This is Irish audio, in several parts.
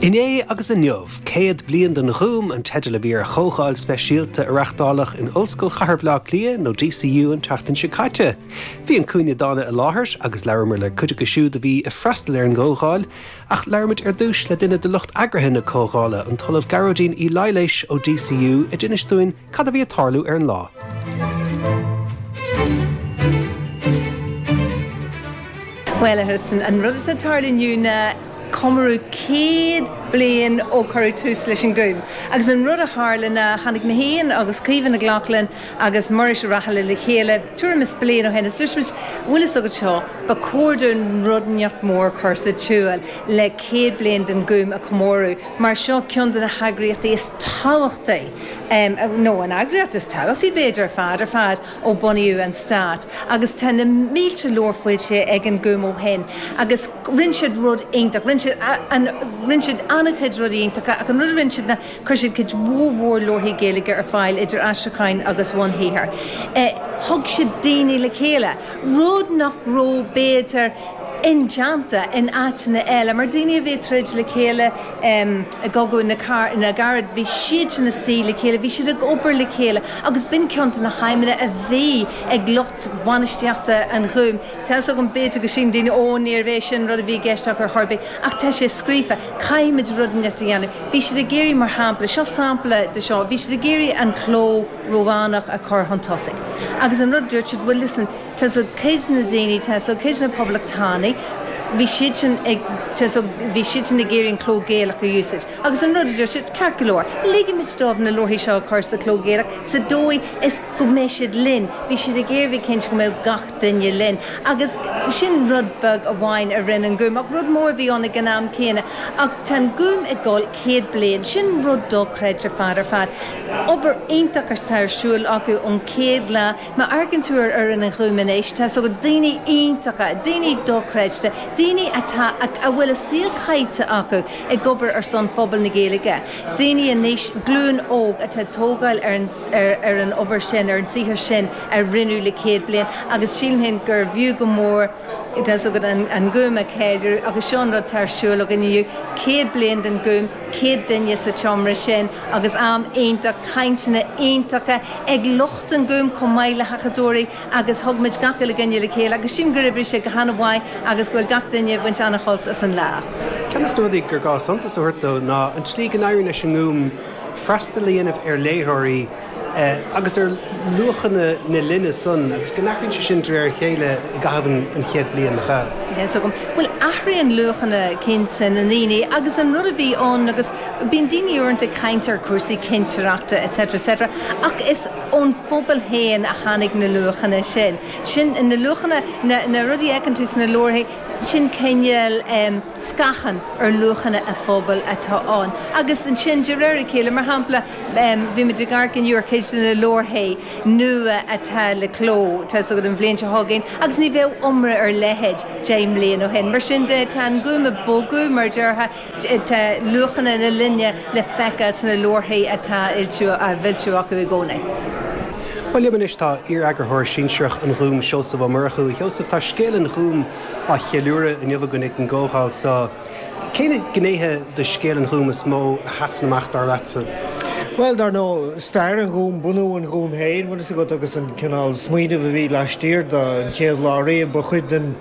Inné agus Inniu, 100 Bliain den Gúm an teideal a bhí ar chomhdháil speisialta a reachtáladh in Ollscoil Chathair Bhaile Átha Cliath nó DCU an tseachtain seo caite. Bhí An Cúinne Dána i láthair agus labhramar le cuid acu siúd a bhí ag freastal ar an gcomhdháil ach labhraimid ar dtús le duine de lucht eagraithe na comhdhála, an tOllamh Gearóidín Uí Laighléis ó DCU a d'inis dúinn Cad a bhí ag tarlú ar an lá? Bhuel, a Tristan, an rud atá ag tarlú inniu ná comóradh céad bliain ó cuireadh tús leis an nGúm. Agus an rud a tharla ná tháinig mé féin agus Caoimhe Nic Lochlainn agus Muiris Ó Raghallaigh le chéile tuairim is bliain ó shin is dúirt muid, bhfuil fhios agat seo, ba chóir dúinn rud inteacht mór a chur sa tsiúl le céad bliain den Gúm a chomóradh mar seo ceann de na heagraíochtaí is tábhachtaí nó an eagraíocht is tábhachtaí b'fhéidir ar fad ar fad ó bunaíodh an stát agus tá na mílte leabhar foilsithe ag an Gúm ó shin agus rinne siad rud iontach, rinne siad an, rinne siad an-chuid rudaí iontacha ach an rud a rinne siad ná chuir siad cuid mhór mhór leabharthaí Gaeilge ar fáil idir aistriúcháin agus bhunshaothair. Thug siad daoine le chéile, rud nach raibh b'fhéidir indéanta in áiteanna eile mar daoine a bhí ag troid le chéile, I gCogadh na gCarad bhí siadsan istigh le chéile, bhí siad ag obair le chéile agus b'in ceann de na haidhmeanna a bhí ag lucht bainistíochta an Ghúim. Tá's agam b'fhéidir go síleann daoine 'Ó, níorbh é sin an rud a bhí i gceist acu ar chor ar bith' ach tá sé scríofa, caithfimid rud inteacht a dhéanamh. Bhí siad ag iarraidh, mar shampla, seo sampla de seo, bhí siad ag iarraidh an cló Rómhánach a chur chun tosaigh agus an rud a dúirt siad 'bhuel listen, Tá's agat cuid de na daoine, tá's agat cuid de na Poblachtánaigh, bhí siad sin ag, tá's agat, bhí siad sin ag iarraidh an cló Gaelach a úsáid. Agus an rud a deir siad, ceart go leor, ligfimid dóibh na leabharthaí seo a chur sa chló Gaelach sa dóigh is go mbeidh siad linn. Bhí siad ag iarraidh bheith cinnte go mbeadh gach duine linn. Agus sin rud beag amháin a rinne an Gúm. Ach rud mór a bhí ann ag an am céanna. Ach tá an Gúm ag dul céad bliain. Sin rud dochreidte ar fad ar fad. Obair iontach atá ar siúl acu ón chéad lá. Má amharcann tú ar fhoireann an Ghúim anois, tá's agat, daoine iontacha, daoine dochreidte, daoine atá, a bhfuil a saol caite acu ag obair ar son phobal na Gaeilge, daoine anois, glúin óg, atá ag tógáil ar an, ar an obair sin, ar an saothar sin a rinneadh le céad bliain agus sílim féin gurbh fhiú go mór, tá's agat, an, an Gúm a cheiliúradh agus seo an rud atá ar siúl againn inniu, céad bliain den Gúm, céad duine sa tseomra sin agus am iontach, cainteanna iontacha ag lucht. den Gúm chomh maith le hacadóirí agus thug muid gach uile dhuine le chéile agus sílim gur oibrigh sé go han-mhaith agus go bhfuil gach duine ag baint an-shult as an lá. Ceann de na rudaí gur gá suntas a thabhairt dó ná an tslí go n-éiríonn leis an nGúm freastal a dhéanamh ar léitheoirí agus ar luachanna na linne san agus go n-athraíonn sé sin de réir a chéile i gcaitheamh an chéad bhliain. Á, bhuel, athraíonn luachanna cinnte na ndaoine agus an rud a bhí ann. Bíonn daoine uaireanta ag caint ar chúrsaí cinsireachta etc etc ach is ón phobal féin a tháinig na luachanna sin. Sin na luachanna, na na rudaí a fheiceann tú sna leabharthaí, sin cineál scáthán ar luachanna a phobail atá ann. Agus ansin de réir a chéile, mar shampla, bhí muid ag amharc inniu ar cuid de na leabharthaí nua atá le cló, tá a fhios agat an bhliain seo chugainn, agus ní bheadh iomrá ar a leithéid deich mbliain ó shin. Mar sin de, tá an Gúm ag bogadh, mar a déarfá, Tá luachanna na linne le feiceáil sna leabharthaí atá á bhfoilsiú acu i gcónaí. Bhuel, liom anois tá iar-eagarthóir sinsearach an Ghúim, Seosamh Ó Murchú. A Sheosaimh, tá scéal an Ghúim á cheiliúradh inniu againn ag an gcomhdháil so. Cé na gnéithe de scéal an Ghúim is mó a sheasann amach, dar leatsa? Bhuel, dar ndóigh, stair an Ghúim, bunú an Ghúim féin, bhfuil fhios agat, agus an cineál smaoinimh a bhí laistiar de an chéad lá riamh, ba chuid den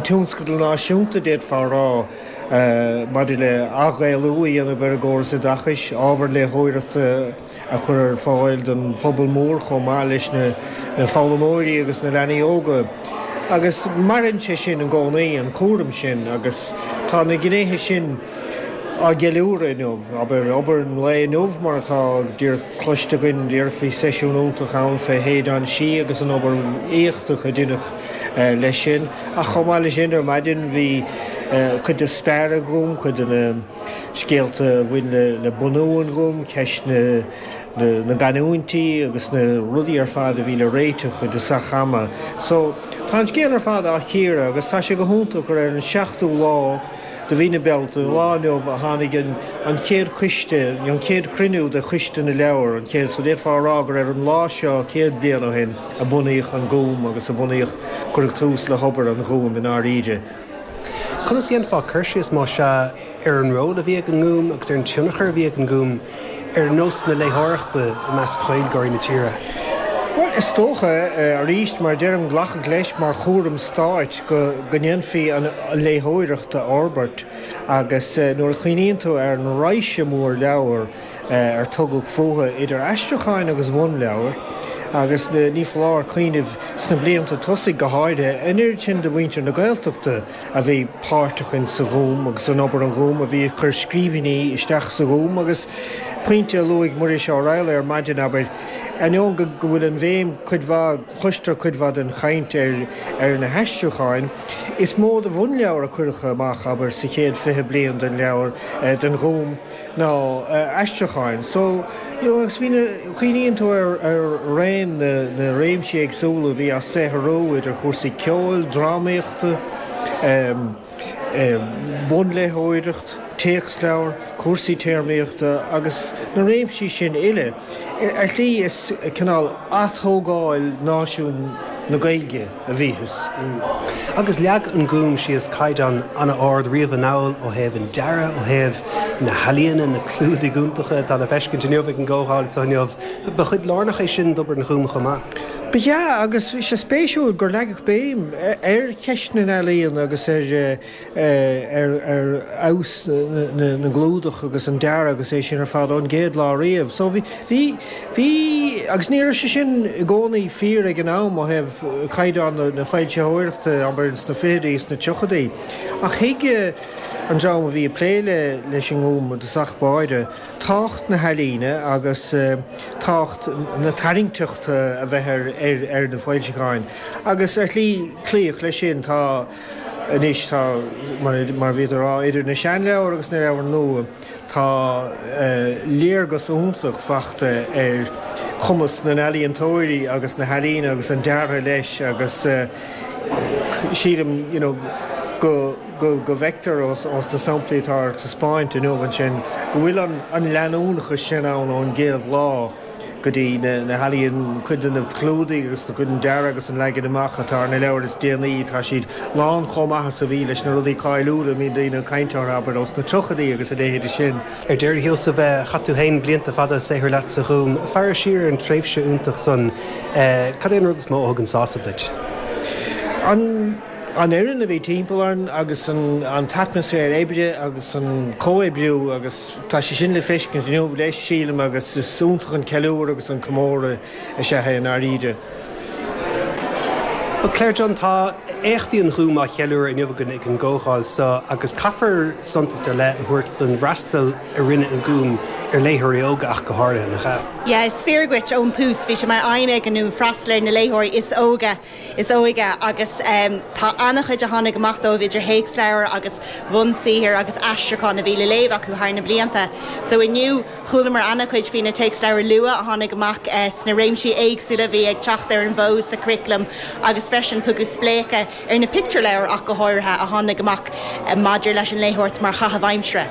tionscadal náisiúnta, d'fhéadfá a rá. maidir le athghaelú a dhéanamh ar an gcóras oideachais, ábhar léitheoireachta a chur ar fáil don phobal mór chomh maith leis na foghlaimeoirí agus na leanaí óga. Agus maireann sé sin i gcónaí, an cúram sin, agus tá na gnéithe sin á gceiliúradh inniu. Abair, obair an lae inniu, mar atá díreach cloiste againn, déarfá, seisiún iontach ann fé Shéideán Sí agus an obair éachtach a deineadh. leis sin. Ach chomh maith leis sin, ar maidin bhí cuid de stair an Ghúm, cuid de na scéalta a bhain le bunú an Ghúm, ceist na gcanúintí agus na rudaí ar fad a bhí le réiteach cuid de sách achrannach. So, tá an scéal ar fad á chíoradh agus tá sé suntasach gur ar an seachtú lá de mhí na Bealtaine, an lá inniu, a tháinig an chéad coiste, an chéad chruinniú de Choiste na Leabhar, an chéad, so d'fhéadfá a rá gur ar an lá seo céad bliain ó shin, a bunaíodh an Gúm agus a bhunaíodh, cuireadh tús le hobair an Ghúim i ndáiríre. Conas a dhéanfá cur síos, má sea, ar an ról a bhí ag an nGúm agus ar an tionchar a bhí ag an nGúm ar nós na léitheoireachta i measc Ghaeilgeoirí na tíre? Bhuel, is dócha, arís, mar a deirim, glacadh leis mar chúram stáit go ndéanfaí an léitheoireacht a fhorbairt agus nuair a chuimhníonn tú ar an raidhse mhór leabhar, ar tugadh fúthu idir aistriúcháin agus bhunleabhair, agus ní foláir cuimhneamh, sna blianta tosaigh go háirithe, an oiread sin de mhuintir na Gaeltachta a bhí páirteach in sa Ghúm agus in obair an Ghúim, a bhí ag cur scríbhinní isteach sa Ghúm, agus pointe a luaigh Muiris Ó Raghalla ar maidin, abair, ainneoin go bhfuil an bhéim, cuid mhaith, cloistear cuid mhaith den chaint ar na haistriúcháin, is mó de bhunleabhair a cuireadh amach, abair, sa chéad fhiche bliain den leabhar, den Ghúm. ná aistriúcháin. So, you know, agus bhí na, cuimhníonn tú ar raon na réimsí éagsúla a bhí á saothrú idir chúrsaí ceoil, drámaíochta, bunléitheoireachta, téacsleabhar, cúrsaí téarmaíochta agus na réimsí sin uile ar shlí is cineál atógáil náisiún na Gaeilge. a bhíothas. Agus leag an Gúm síos caighdeán an-ard riamh anall ó thaobh an dearaidh, ó thaobh na healaíona, na clúdaigh iontacha atá le feiscint inniu ag an gcomhdháil seo inniu, ba chuid lárnach é sin d'obair an Ghúim chomh maith. Ba ea, agus bhí sé spéisiúil gur leagadh béim ar cheist na n-ealaíon agus ar ar fheabhas na gclúdach agus an dearadh agus é sin ar fad ón gcéad lá riamh. So, bhí, bhí, bhí, agus ní raibh sé sin i gcónaí fíor ag an am ó thaobh caighdeán na foilsitheoireachta, abair, sna fichidí is na tríochaidí, ach thuig an dream a bhí ag plé le, leis an nGúm, de thosach báire, tábhacht na healaíne agus tábhacht na tarraingteachta a bheith ar, ar, ar na foilseacháin. Agus ar shlí, cloíodh leis sin. Tá. Anois tá, mar a bhí tú a rá, idir na seanleabhair agus na leabhair nua, tá léargas iontach fachta ar chumas na n-ealaíontóirí agus na healaíne agus an deartha leis agus sílim you know go bhfeictear ós na samplaí atá ar taispeáint inniu ansin go bhfuil an leanúnachas sin ann ón gcéad lá. go dtí na healaíon, cuid de na clúdaigh agus cuid den dearadh agus an leagan amach atá ar na leabhair is déanaí, tá siad lán chomh maith is a bhí leis na rudaí cáiliúla a mbíonn daoine ag caint orthu, abair, ós na tríochaidí agus a leithéide sin. Ar deireadh, a Sheosaimh, chaith tú féin blianta fada ag saothrú leat sa Ghúm. Ag féachaint siar ar an tréimhse iontach san, cad é an rud is mó a thugann sásamh duit? An fhoireann a bhí timpeall orainn agus an t-atmaisféar oibre agus an comhoibriú agus. Tá sé sin le feiscint inniu leis, sílim, agus is iontach an ceiliúradh agus an comóradh is ea é i ndáiríre. Bhuel, Claire Dunne, tá éachtaí an Ghúim á gceiliúradh inniu againn ag an gcomhdháil seo, agus caithfear suntas ar leith a thabhairt don bhfreastal a rinne an Gúm ar léitheoirí óga ach go háirithe, nach ea? Yeah, is fíor dhuit, ón tús bhí sé mar aidhm ag an nGúm freastal ar na léitheoirí is óige is óige agus tá an-chuid a tháinig amach díobh idir théacsleabhair agus bunsaothair agus aistriúcháin a bhí le léamh acu thar na blianta. So inniu chualamar an-chuid faoi na téacsleabhair luath a tháinig amach sna réimsí éagsúla a bhí ag teacht ar an bhfód sa churriculum agus freisin tugadh spléachadh ar na pictiúrleabhair ach go háirithe a tháinig amach maidir leis an léitheoireacht mar chaitheamh aimsire.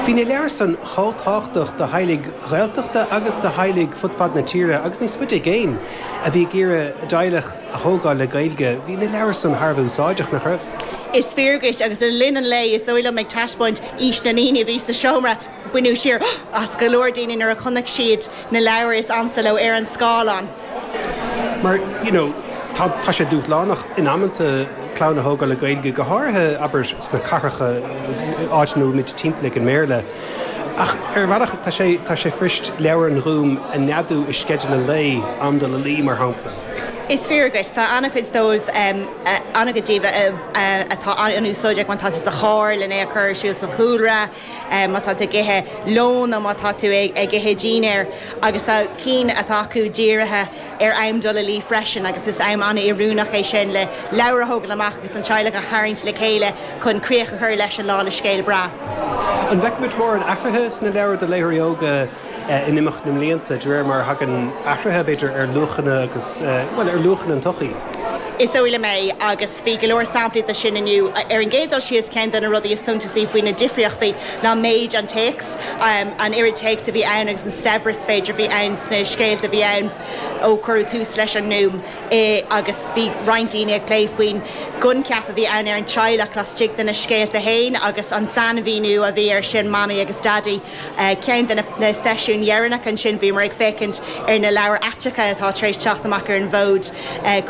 Bhí na leabhair san chomh tábhachtach do theaghlaigh Ghaeltachta agus do theaghlaigh fud fad na tíre agus níos faide i gcéin. a bhí ag iarraidh a dteaghlach a thógáil le Gaeilge. Bhí na leabhair san thar a bheith úsáideach, nach raibh? Is fíor dhuit, agus le linn an lae, is dóigh liom, ag taispeáint aois na ndaoine a bhí sa seomra, baineadh siar as go leor daoine nuair a chonaic siad na leabhair is ansa leo ar an scáileán. Mar, you know, tá sé dúshlánach in amanta clann a thógáil le Gaeilge, go háirithe, abair, sna cathracha, áiteanna a bhfuil muid timpeallaithe ag an mBéarla. Ach ar bhealach, tá sé, tá sé fuirist leabhair an Ghúim a neadú i sceideal an lae, am dul a luí, mar shampla. Is fíor duit, tá an-chuid dóibh, an-chuid díobh atá an-úsáideach má tá tú sa charr lena a chur ar siúl sa chúlra, má tá tú ag ithe lóin nó má tá tú ag ithe dinnéir, agus tá cinn atá acu dírithe, ar am dul a luí freisin agus is am an-oiriúnach é sin le leabhair a thógáil amach agus an teaghlach a tharraingt le chéile chun críoch a chur leis an lá le scéal breá. An bhfeicimid mórán athruithe sna leabhair do léitheoirí óga in imeacht na mblianta, de réir mar a thagann athruithe, b'fhéidir, ar luachanna agus, bhuel, ar luachanna an tsochaí? Is dóigh liom é, agus bhí go leor samplaí de sin inniu. Ar an gcéad dul síos, ceann de na rudaí is suntasaí faoi na difríochtaí ná méid an téacs. an oiread téacs a bhí ann agus an saibhreas, b'fhéidir, a bhí ann sna scéalta a bhí ann ó cuireadh tús leis an nGúm. Agus bhí roinnt daoine ag plé faoin gcoincheap a bhí ann ar an teaghlach laistigh de na scéalta féin agus an sainmhíniú a bhí air sin, Mamaí agus Daidí. Ceann de na seisiúin dheireanacha ansin, bhíomar ag féachaint ar na leabhair aiteacha atá tar éis teacht amach ar an bhfód,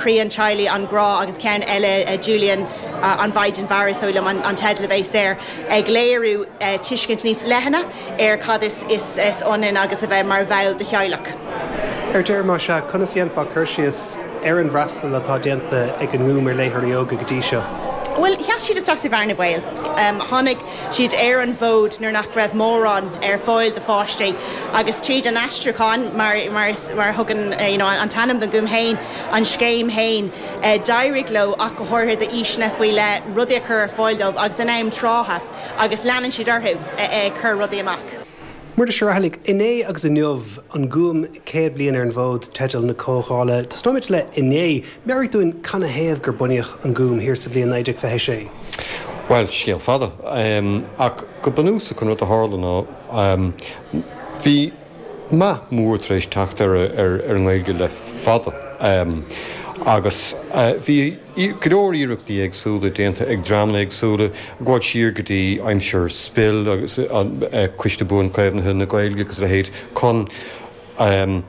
Croí an Teaghlaigh, An Grá agus ceann eile, Julian, An Mhaighdean Mhara, is dóigh liom an teideal a bhí air. ag léiriú tuiscint níos leithne ar cad is ionann agus a bheith mar bhall de theaghlach. Ar deireadh, más ea, conas a dhéanfá cur síos ar an bhfreastal atá déanta ag an nGúm ar léitheoirí óga go dtí seo? Bhuel, sheas siad isteach sa bhearna bhaoil. Tháinig siad ar an bhfód nuair nach raibh mórán ar fáil do pháistí agus tríd an aistriúchán, mar a thugann an t-ainm don Ghúm féin, an scéim féin, d'éirigh leo ach go háirithe d'aoiseanna faoi leith rudaí a chur ar fáil dóibh agus in am trátha agus leanann siad orthu ag cur rudaí amach. Muiris Ó Raghallaigh, 'Inné agus Inniu, An Gúm 100 bliain ar an bhfód' teideal na comhdhála. Tosnóimid le 'Inné'. Meabhraigh dúinn cad ina thaobh gur bunaíodh an Gúm thiar sa bhliain 1926. Bhuel, scéal fada é, ach go bunúsach an rud a tharla ná bhí. meath mór tar éis teacht ar an nGaeilge le fada agus bhí go leor iarrachtaí éagsúla déanta ag dreamanna éagsúla, gabháil siar go dtí aimsir SPIL agus Coiste Buanchaomhnaithe na Gaeilge agus a leithéid, chun an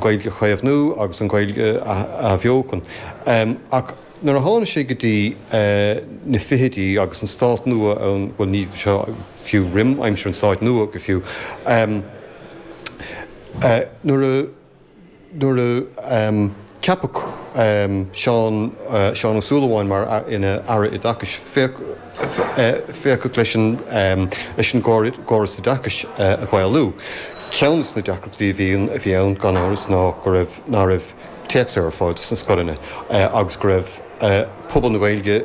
Ghaeilge a chaomhnú agus an Ghaeilge a athbheochan. Ach. Nuair a tháinig sé go dtí na fichidí agus an stát nua ann, bhuel ní fiú roim aimsir an stáit nua go fiú, nuair a, nuair a ceapadh Seán Ó Súilleabháin mar, ina Aire Oideachais, féachadh leis an gcóras oideachais a Ghaelú. Ceann de na deacrachtaí a bhí ann gan amhras ná go raibh, ná raibh, téacsleabhair ar fáil do na scoileanna agus go raibh pobal na Gaeilge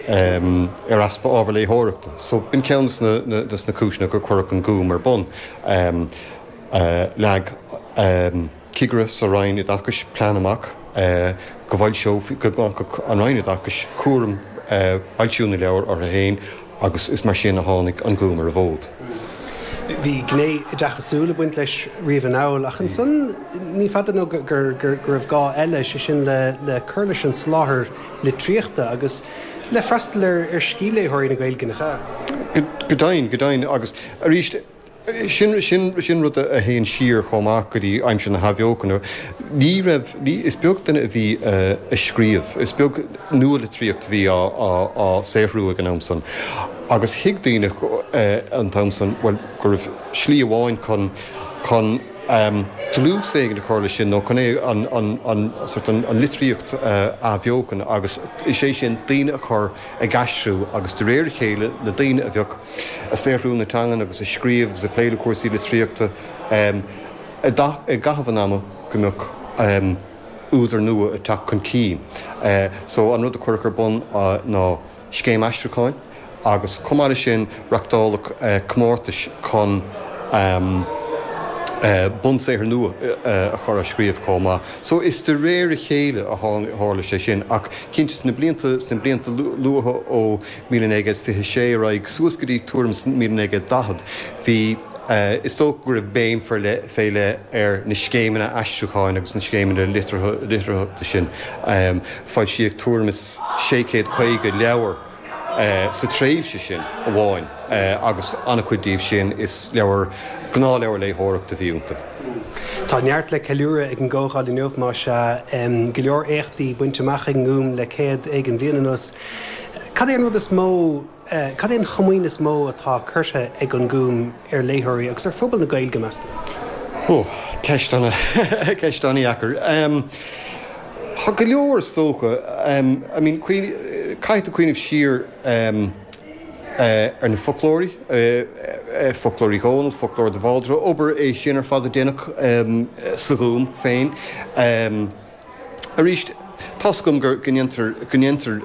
ar easpa ábhar léitheoireachta so b'in ceann de na cúiseanna gur cuireadh an Gúm ar bun. Leag cigire sa Roinn Oideachais plean amach go bhfoilseofaí, go nglacfadh an Roinn Oideachais cúram foilsiú na leabhar orthu féin agus is mar sin a tháinig an Gúm ar an bhfód. Bhí gné oideachasúil ag baint leis riamh anall, ach ansan ní fada nó go raibh gá eile, sé sin le cur leis an soláthar litríochta agus le freastal ar scíthléitheoirí na Gaeilge. Go deimhin, go deimhin, agus arís. Sin rud a théann siar chomh maith go dtí aimsir na hAthbheochana. Ní raibh, is beag duine a bhí ag scríobh, is beag nua-litríocht a bhí á saothrú ag an am san. Agus thuig daoine an t-am san, bhuel, go raibh slí amháin chun dlús éigin a chur leis sin, nó chun é, an litríocht a athbheochan, agus is é sin daoine a chur ag aistriú, agus de réir a chéile, na daoine a bheadh. ag saothrú na teangan agus ag scríobh agus ag plé le cúrsaí litríochta i gcaitheamh an ama go mbeadh údair nua ag teacht chun cinn. So an rud a cuireadh ar bun ná scéim aistriúcháin agus chomh maith leis sin reachtáladh comórtais chun bunsaothair nua a chur á scríobh chomh maith. So is de réir a chéile a tharla sé sin ach cinnte sna blianta luatha ó 1926 ar aghaidh suas go dtí tuairim is 1940, bhí Is dócha go raibh béim fé leith, fé leith ar na scéimeanna aistriúcháin agus na scéimeanna litearthachta sin. Foilsíodh tuairim is sé céad caoga leabhar sa tréimhse sin amháin agus an-chuid díobh sin, is leabhair, gnáthleabhair léitheoireachta a bhí iontu. Tá neart le ceiliúradh ag an gComhdháil inniu, más ea. Go leor éachtaí bainte amach ag an nGúm le céad éigin bliain anuas, Cad é an rud is mó, cad é an chomaoin is mó atá curtha ag An Gúm ar léitheoirí agus ar phobal na Gaeilge, meas tú? Ó, ceist ana, ceist an-dheacair. Tá go leor, is dócha. I mean, caithfidh tú cuimhneamh siar ar na foclóirí, Foclóir Uí Dhónaill, Foclóir de Bhaldraithe, obair é sin ar fad a déanadh sa Ghúm féin. Arís, tá's agam go ndéantar, go ndéantar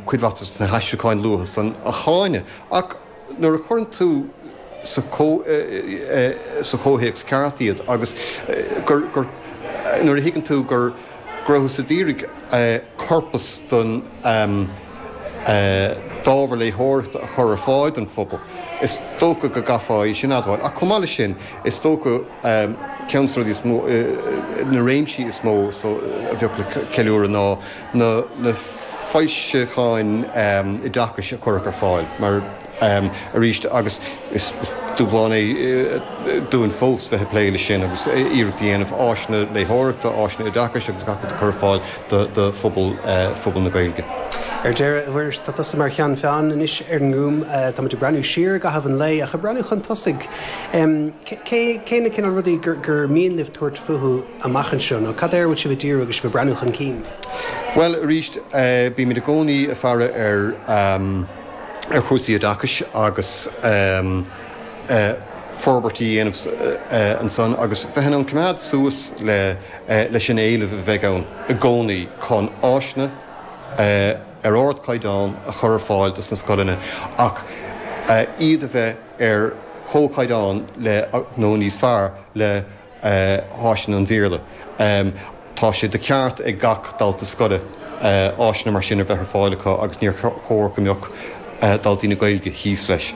cuid mhaith de na haistriúcháin luatha san a cháineadh, ach nuair a chuireann tú sa chomhthéacs ceart iad agus nuair a thuigeann tú go rabhthas ag díriú corpas don d'ábhar léitheoireachta a chur ar fáil don phobal, is dócha go gcaithfeá é sin a admháil. Ach chomh maith leis sin, is dócha. amh. Ceann de na rudaí is mó, na réimsí is mó a bheadh le ceiliúradh ná na foilseacháin oideachais a cuireadh ar fáil, mar arís agus is dúshlán é dúinn fós bheith ag plé leis sin agus iarracht a dhéanamh áiseanna léitheoireachta, áiseanna oideachais agus gach rud a chur ar fáil do phobal, phobal na Gaeilge. Ar deireadh, a Mhuiris, tá tusa mar cheann feadhain anois ar an nGúm. Táimid ag breathnú siar i gcaitheamh an lae, ach ag breathnú chun tosaigh. Cé na cineál rudaí gur mian libh tabhairt fúthu amach anseo, nó cad air a bhfuil sibh ag díriú agus sibh ag breathnú chun cinn? Bhuel, arís, bímid i gcónaí ag faire ar, ar chúrsaí oideachais agus forbairt a dhéanamh ansan agus bheith in ann coimeád suas leis an éileamh a bheidh ann i gcónaí chun áiseanna ar ardchaighdeán a chur ar fáil dos na scoileanna ach iad a bheith ar chomhchaighdeán le nó níos fearr le háiseanna an Bhéarla. Tá sé de cheart ag gach dalta scoile áiseanna mar sin a bheith ar fáil acu agus níor chóir go mbeadh daltaí na Gaeilge thíos leis.